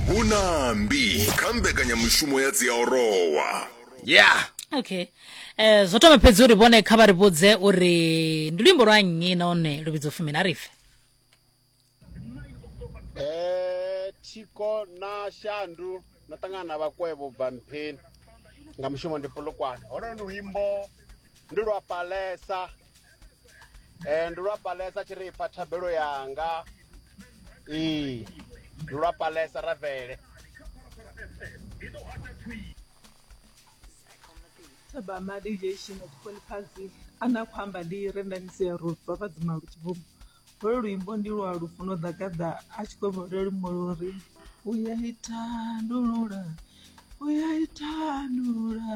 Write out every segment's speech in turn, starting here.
hu na mbi kha mbekanyamushumo ya dziaorowa ya okay um zwo thoma fhedzi uri vhone kha vha ri vhudze uri ndi luimbo lwa nnyi nahone lu vhidzo fumini a ri fe Eh, thiko na shandu na ṱangana na vhakwevho bva mpheni nga mushumo ndi polokwane holo luimbo ndi lwa palesa Eh, ndi lwa palesa tshi ri ipfa thabelo yanga ee ndi lwa palesa ravele Taba mali ye shino tshikoli phansi ana khou amba ndi rendanisi ya road vha vha dzima lu tshibvuma holu luimbo ndi lwa lufuno ḓagaḓa a tshi khou vhole lumbo luri u ya itandulula u ya itandulula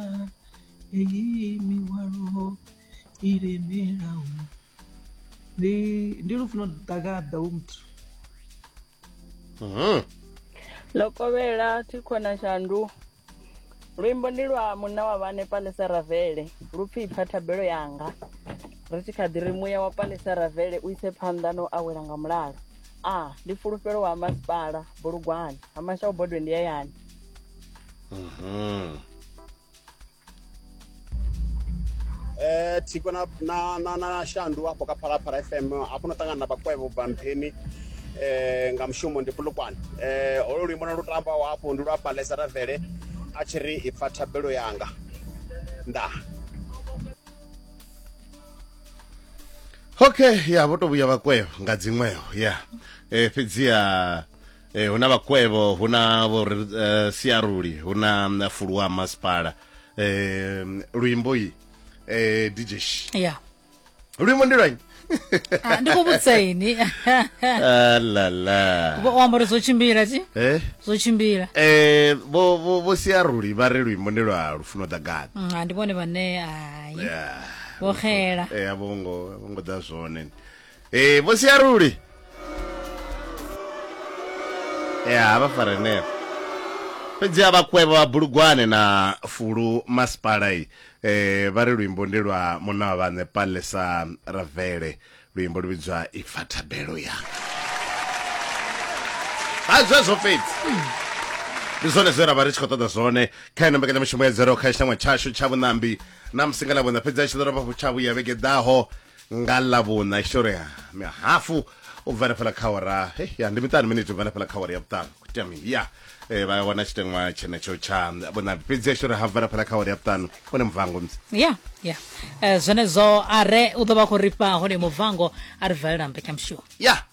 heyi mihwalo i lemelaho ndi ndi lufuno ḓagaḓa wo muthu mhm. lokovhela thikhona shandu luimbo ndi lwa munna wa vhane palesa ravele lu pfi ipfa thabelo yanga ri tshi kha ḓi ri muya wa palesa ravele u ise phanḓa no awela nga mulalo a ah, ndi fulufhelo wa masipala bulugwane ha mashaubodwe ndi yayani mhm. Eh, tiko na, na, na, na shandu hapo kaphalaphala fm apo natangana na bakwebo ubva mpheni eh, nga mushumo ndi pulukwane eh, olo luimbo na lutamba wapo ndi lwa palesa tavele a tshi ri ipfa thabelo yanga nda okay ya vho to vhuya vhakweo nga dziṅweo ya eh, fhedziha e, hu na vhakwevho hu na vho uh, siaruli hu na mm, fulu wa masipala e, mm, luimbo yi e, dj yeah. luimbo ndi lwanyi ah, ndi khou vhudzisa ini ah, lala u amba uri zwo tshimbila ti eh? zwo tshimbila eh, vho siaruli vha ri luimbo ndi lwa lufuno ḓagani mm, ah, ndi vhone vhane ai vho xela eh, a vho ngo ḓa zwone ee vho siaruli ya vha farenevho fhedzi a vhakwevho vha bulugwane na fulu masipala i eh, vha ri luimbo ndi lwa munna wa vhaṋe palesa ravele luimbo lu vhidzwa ipfa thabelo yanga ha zwezwo fhedzi ndi zwone zwe ra vha ri tshi khou ṱoḓa zwone kha ino mbekanyamushumo ya dzero kha tshiṱangwa tshashu tsha vhuṋambi na musi nga ḽa vhuṋa fhedzi a tshi ḓo rovha tsha vhuya vhege ḓaho nga ḽavhuṋa historia mihafu u bva hanefhala kha ora ya ndi miṱanu miniti u bva hanefhala kha ora ya vhuṱanu kuitea mini ya eh, vha wana tshiteṅwa tshenetsho tsha vhuṋambi fhedzi ya historia ha bva hanefhala kha ora ya vhuṱanu hone muvhango msi ya ya Eh, zwenezwo a re u ḓo vha khou ri fha hone mubvango a ri valela mbekanyamushumo ya